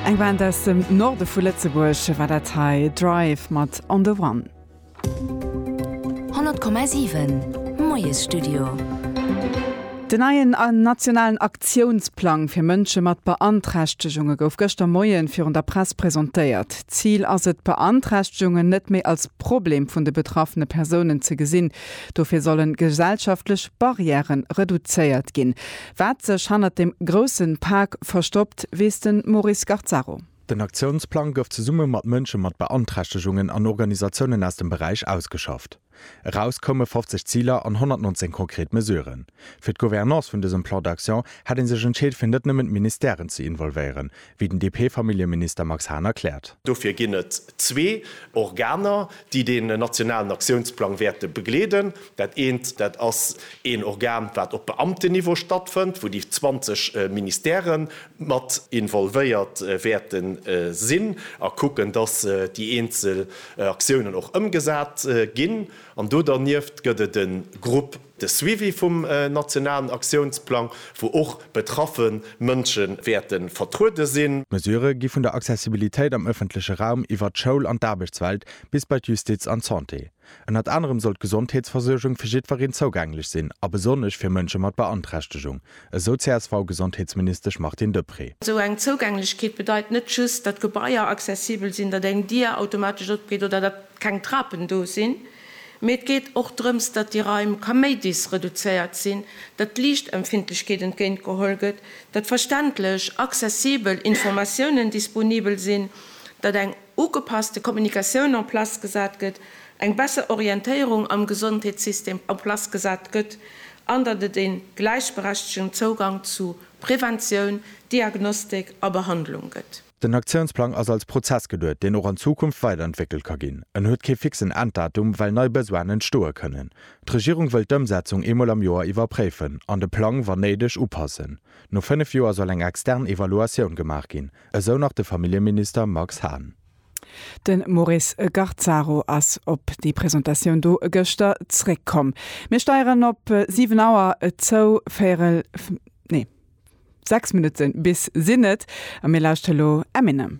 Eng Band aus dem Norde vu Lëtzebuerg war dat hei, Drive mat On The One. 100,7 Moiesstudio. Den neien nationalen Aktiounsplang fir Mënsche mat Beanträchtegunge gouf gëschter Moien virun der Press presentéiert. Zil ass et, Beanträchtegungen net méi als Problem vun de betraffene Persounen ze gesinn. Dofir sollen gesellschaftlech Barrièren reduzéiert ginn. Wat sech hannert dem grousse Pak verstoppt, weess de Maurice Garzaro. Den Aktiounsplang gouf zesumme mat Mënsche mat Beanträchtegungen an Organisatiounen aus dem Beräich ausgeschafft. Eraus koume 50 Ziler an 119 konkret Mesuren. Fir d'Gouvernance vun dësem Plan d'action hätt ee sech entscheet fir net nëmmen d'Ministèren ze involvéieren, wéi den DP-Familljeminister Max Hahn erkläert. Dofir ginn et zwee Organer, déi deen nationalen Aktiounsplang wäerte begleeden. Dat eent, dat ass een Organ, wat op Beamtenniveau stattfënnt, wou déi 20 Ministèrë mat involvéiert wäerte sinn a kucken, datt déi eenzel Aktiounen och ëmgesat ginn. An do dernieft gëtt et e Grupp. De Suivi vum nationalen Aktiounsplang, wou och betraffe Mënsche wäerte vertruede sinn. D'Mesurë gi vun der Accessibilitéit am ëffentleche Raum iwwert d'Schoul an d'Aarbechtswelt bis bei d'Justiz an d'Santé. Ënnert anerem soll d'Gesondheetsversuergung fir jiddwereen zougänglech sinn a besonnesch fir Mënsche mat Beanträchtegung, esou d'CSV-Gesondheetsministesch Martine Deprez. Esou eng Zouugänglechkeet bedeit net just, datt Gebaier accessibel sinn, datt eng Dier automatesch opgeet oder datt keng Trapen do sinn. Mee et geet och drëms, datt déi Raim kaméidis reduzéiert sinn, datt d'Liichtempfindlechkeet entgéint geholl gëtt, datt verständlech, accessibel Informatiounen disponibel sinn, datt eng ugepasste Kommunikatioun en place gesat gëtt, eng besser Orientéierung am Gesondheetssystem en place gesat gëtt an datt et ee gläichberechtegen Zougang zu Preventioun, Diagnostik a Behandlung gëtt. Den Aktiounsplang ass als Prozess geduet, deen och an Zukunft weiderentwéckelt ka ginn. En huet kee fixen Enddatum, well nei Besoinen entstoe kënnen. D'Regierung wëllt d'Ëmsetzung eemol am Joer iwwerpréifen an de Plang, wann néideg, upassen. No fënnef Joer soll eng extern Evaluatioun gemaach ginn, esou nach de Familljeminister Max Hahn. De Maurice Garzaro ass op déi Presentatioun do gëschter zréckkomm. Mir steieren op 7 Auer zou. 6 Minutten bis sinn et a mir lauschteren elo Eminem.